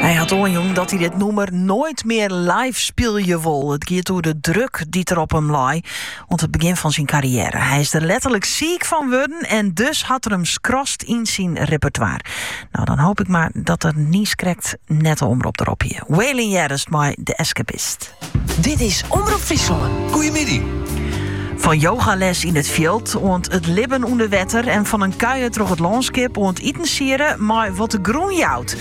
Hy hat oanjûn dat hy dit nûmer noait mear live spylje wol. It giet oer de druk dy't er op him lei oan it begjin fan syn karriêre. Hy is der letterlik siik fan wurden en dus hat er him skrast yn syn repertoire. No, dan hoop ik mar dat er niiskrekt net de Omrop derop hie. Waylon heardest mei The Escapist. Dit is Omrop Fryslân. Goedemiddag. Fan yogales yn it fjild oant it libben ûnder wetter en fan in kuier troch it lânskip oant itensiede mei wat de grûn jout.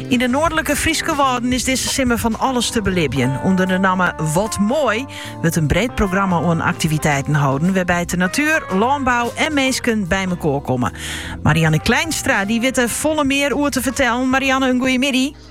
Yn de noardlike Fryske Wâlden is dizze simmer fan alles te belibjen. Under de namme Wat Mooi wurdt in breed programma oan aktiviteiten holden wêrby't de natuer, lânbou en minsken by mekoar komme. Marianne Kleinstra dy wit der folle mear oer te fertellen. Marianne, in goeiemiddei.